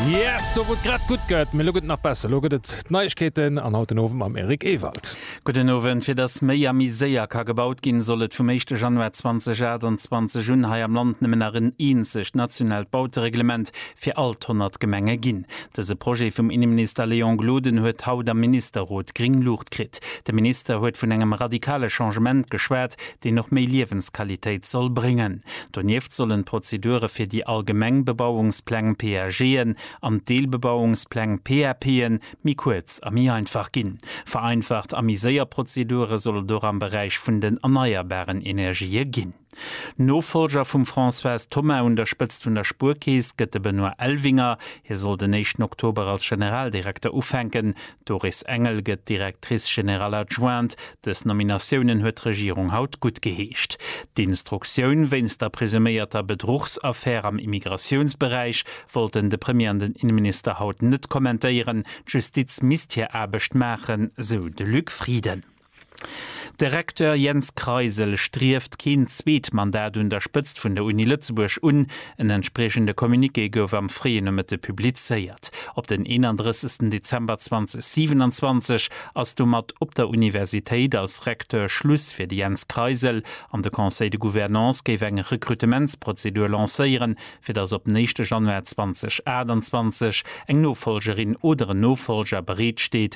Yes, do wou et grad gutt gëtt, mee elo gëtt et nach besser. Elo gëtt et d'Neiegkeeten an haut den Owend mam Eric Ewald. Gudden Owend. Fir datt méi a méi séier ka gebaut ginn, soll et vum éischte Januar 2028 un hei am Land nëmmen nach en eenzegt nationaalt Bautereglement fir all d'honnert Gemenge ginn. Dëse Projet vum Inneminister Léon Gloden huet haut am Ministerrot gréng Luucht kritt. De Minister huet vun engem radikale Changement geschwat, deen och méi Liewensqualitéit soll bréngen. Donieft sollen d'Prozedure fir déi allgemeng Bebauungspläng, PAGen, an d'Deelbebauungspläng, PAPen, méi kuerz a méi einfach ginn. Vereinfacht a méi séier Prozedure soll et och am Beräich vun den erneierbaren Energië ginn. Nofollger vum Françoise Thoma un der Spëtzt vun der Spuerkeess gëtt de Benoît Elvinger. Hie soll den éischten Oktober als Generaldirekter ufänken. D'Doris Engel gëtt Directrice générale adjointe. Dës Nominatiounen huet d'Regierung haut guttgeheescht. D'Instruktioun wéinst der presuméierter Bedruchsaffär am Immigratiounsberäich wollten de Premier an den Innenminister haut net kommentéieren. D'Justiz misst hir Aarbecht maachen, sou de Luc Frieden. De Recteur Jens Kreisel strieft keen zweet Mandat un der Spëtzt vun der Uni Lëtzebuerg un. En entspriechende Communiqué gouf am fréien Nomëtte publizéiert. Op den 31 Dezember 2027 ass domat op der Universitéit als Recteur Schluss fir de Jens Kreisel an de Conseil de Gouvernance géif eng Rekrutementsprozedur lancéieren, fir datt op den éischte Januar 2028 eng Nofolgerin oder en Nofolger bereet steet,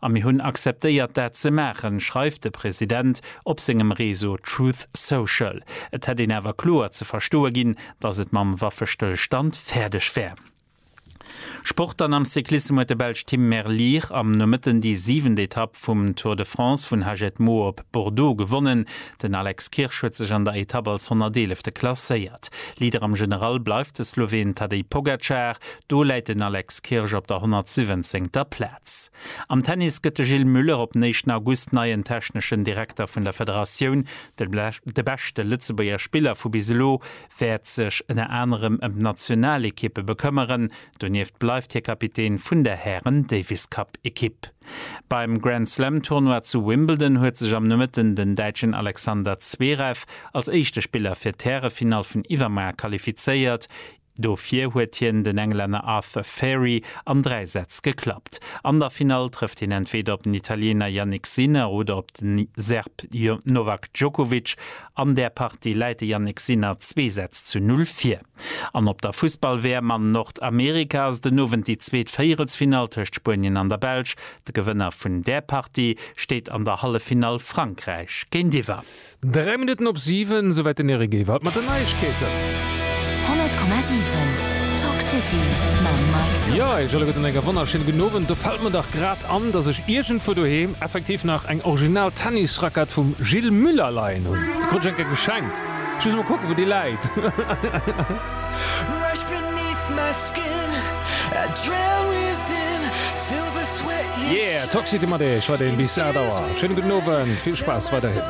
A mir hunn akzeptéiert dat ze maachen, schreift de President op sengem Reseau Truth Social. Et hätt een awer kloer ze verstoe ginn, datt et mam Waffestëllstand fäerdeg wär. Sport Dann am Cyclissem huet de Belsch Tim Merlier am Nomëtten déi siwent Etapp vum Tour de France vun Hagetmau op Bordeaux gewonnen. Den Alex Kirsch huet sech an der Etapp als 111. klasséiert. Leader am General bleift de Sloween Tadej Pogacar. Do läit den Alex Kirsch op der 117. Plaz. Sätz. Am Tennis gëtt de Gilles Muller op den éischten August neien techneschen Direkter vun der Federatioun. De beschte Lëtzebuerger Spiller vu bis elo wäert sech ënner anerem ëm d'Nationalekippe bekëmmeren. Donieft bleift hie Kapitän vun der Hären-Davis-Cup-Ekipp. Beim Grand Slam Tournoi zu Wimbledon huet sech am Nomëtten den Däitschen Alexander Zverev als éischte Spiller fir d'Härefinall vun iwwermuer qualifizéiert. Dofir huet hien den Englänner Arthur Fairy an 3 Sätz geklappt. An der Finall trëfft hien entweeder op den Italiener Jannik Sinner oder op den Serb Novak Djokovic. An där Partie läit de Jannik Sinner zwee Sätz zu null vir. An op der Fussball-WM an Nordamerika ass den Owend déi zweet Véierelsfinall tëscht Spuenien an der Belsch. De Gewënner vun där Partie steet an der Halleffinall Frankräich géintiwwer. Dräi Minutten op siwen, esouwäit den Eric Ewald mat den Neiegkeeten. 100,7 Talk City mam Mike Tock. Jo, eech alleguerten eng wonnerschéin gudden Owend. Do fällt mer dach grad an, dass ech iergendwou doheem effektiv nach eng original Tennisrackett vum Gilles Muller leien hunn. Déi krut ech eng Kéier geschenkt. Ech muss mol kucken, wou déi läit. Yeah, Talk City mat iech weiderhin bis 8 Auer. Schéine gudden Owend, vill Spaass weiderhin.